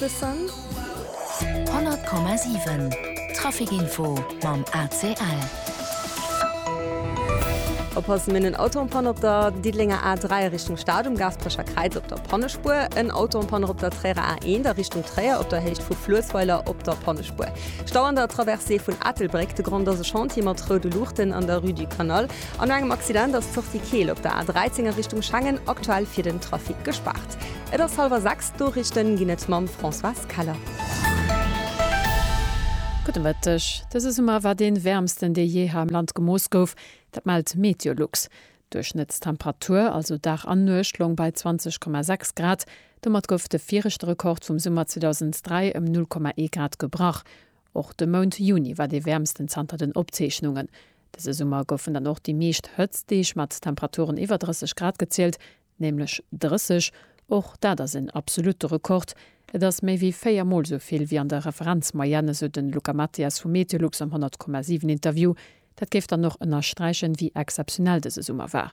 The Sun. 100,7 Trafikinfo mam ACL. Oppassen, mir hunn en Auto en panne op der Diddelenger A3 a Richtung Stad, um Gaasperecher Kräiz op der Pannespuer. En Auto en panne op der Tréierer A1 a Richtung Tréier op der Héicht vu Fluessweiler op der Pannespuer. Stau an der Traversée vun Ettelbréck. De Grond ass e Chantier mat roude Luuchten an der Rue du Canal. An no engem Accident ass d'Sortie Keel op der A13 a Richtung Schengen aktuell fir den Trafic gespaart. Et ass hallwer 6. D'Noriichten ginn et mam Françoise Keller. Gudde Mëtteg. Dëse Summer war dee wäermsten, dee jee hei am Land gemooss gouf. Dat mellt Meteolux. D'Duerchschnëttstemperatur, also Dag an Nuecht, loung bei 20,6 Grad. Domat gouf de viregte Rekord vum Summer 2003 ëm 0,1 Grad gebrach. Och de Mount Juni war dee wäermsten zanter den Opzeechnungen. Dëse Summer goufen dann och déi meescht Hëtztdeeg mat Temperaturen iwwer 30 Grad gezielt, Nämlech 30, och dat ass en absolute Rekord. Et ass méi wéi véier Mol esou vill wéi an der Referenzmoyenne, esou de Luca Mathias vu Meteolux am 100,7 Interview. Dat géif dann och ënnersträichen, wéi exzeptionell dëse Summer war.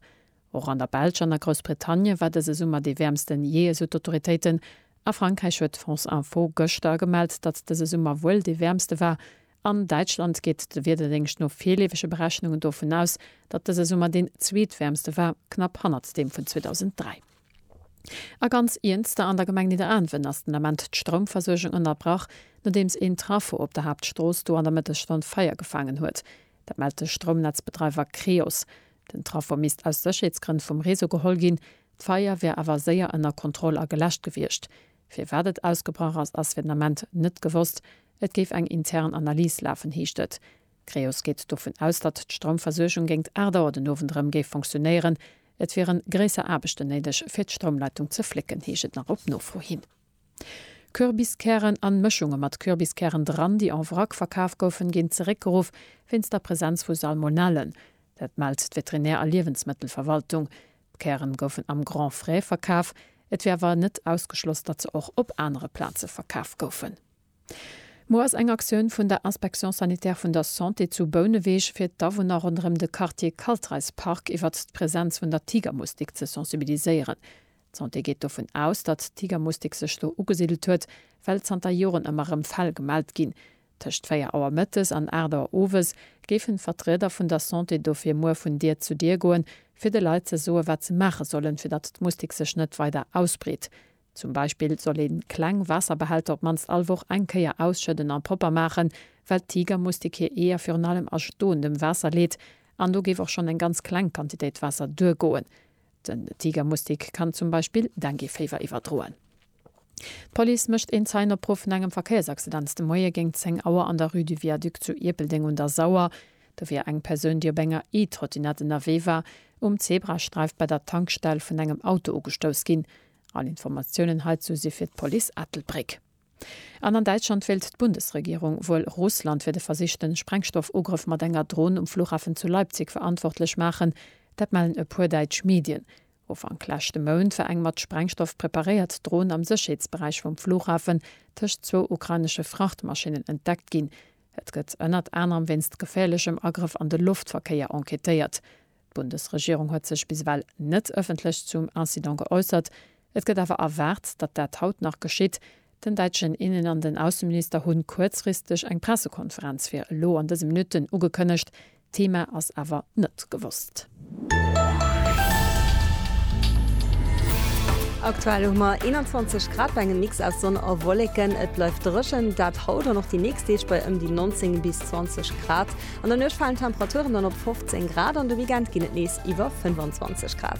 Och an der Belsch an a Groussbritannie war dëse Summer dee wäermsten jee, esou d'Autoritéiten. A Frankräich huet France Info gëschter gemellt, datt dëse Summer wuel dee wäermste war, An Däitschland geet de Wiederdéngscht no virleefege Berechnungen dovun aus, datt dëse Summer deen zweetwäermste war, knapp hannert deem vun 2003. A ganz iernster, an der Gemeng Nidderaanwen ass den Ament d'Stroumversuergung ënnerbrach, nodeems een Trafo op der Haaptstrooss do an der Mëttesstonn Feier gefaangen huet. Dat mellt de Stroumnetzbedreiwer Creos. Den Trafo misst aus Sécherheetsgrënn vum Réseau geholl ginn. D'Feier wär awer séier ënner Kontroll a geläscht gewiescht. Firwat et ausgebrach ass, ass fir den Ament net gewosst. Et géif eng intern Analys lafen, heescht et. D'Creos geet dovun aus, datt d'Stroumversuergung géingt 8 Auer den Owend erëm géif fonctionéieren. Et wiere gréisser Aarbechten néideg, fir d'Stroumleitung ze flécken, heescht et nach op Nofro hin. Kürbiskären an Mëschunge mat Kürbiskären dran, déi en vrac verkaf goufen, ginn zeréckgeruff wéinst der Presenz vu Salmonellen. Dat mellt d'Veterinär a Liewensmëttelverwaltung. D'Kären goufen am Grand Frais verkaf. Et wier awer net ausgeschloss, datt se och op anere Plaze verkaf goufen. Muer ass eng Aktioun vun der Inspection sanitaire vun der Santé zu Bouneweg fir d'Awunner ronderëm de Quartier Kaltreispark iwwert d'Presenz vun der Tigermustik ze sensibiliséieren. D'Santé geet dovun aus, datt d'Tigermustik sech do ugesidelt huet, well zanter Joren ëmmer erëm Fäll gemellt ginn. Tëscht 4 Auer mëttes an 8 Auer owes géifen d'Vertrieder vun der Santé dofir muer vun Dier zu Dier goen, fir de Leit ze soen, wat se maache sollen, fir datt d'Mustik sech net weider ausbreet. Zum Beispill soll een kleng Waasserbehälter op mannst all Woch eng Kéier ausschëdden an propper maachen, well d'Tigermustik hir Eeër virun allem a stoendem Waasser leet an do géif och schonn eng ganz kleng Quantitéit Waasser duergoen. Den Tigermustik kann zum Beispill Dengueféiwer iwwerdroen. D'Police mécht een Zeienopruff vun engem Verkéiersaccident de Moie géint 10 Auer an der Rue du Viaduc zu Ierpeldeng un der Sauer. Do wier eng Persoun, déi op enger E-Trottinette ënnerwee war, um Zebrasträif bei der Tankstell vun engem Auto ugestouss ginn. All Informatiounen heizou si fir d'Police Ettelbréck. An an Däitschland wéilt d'Bundesregierung wuel Russland fir de versichten Sprengstoffugrëff mat enger Dron um Flughafen zu Leipzig verantwortlech maachen. Dat mellen e puer däitsch Medien. Ufank leschte Mount war eng mat Sprengstoff preparéiert Dron am Sécherheetsberäich vum Flughafen tëscht zwou ukrainesche Frachtmaschinnen entdeckt ginn. Et gëtt ënnert anerem wéinst geféierlechem Agrëff an de Loftverkéier enquêtéiert. D'Bundesregierung huet sech bis ewell net ëffentlech zum Incident geäussert. Et gëtt awer erwaart, datt dat haut nach geschitt. Den däitschen Innen an den Ausseminister hunn kuerzfristeg eng Pressekonferenz fir elo an dëse Minutten ugekënnegt. D'Thema ass awer net gewosst. Aktuell hu mer 21 Grad bei engem Mix aus Sonn a Wolleken. Et bleift dréchen, dat haut an och déi nächst Deeg bei ëm déi 19 bis 20 Grad. An der Nuecht falen d'Temperaturen dann op 15 Grad an de Weekend ginn et nees iwwer 25 Grad.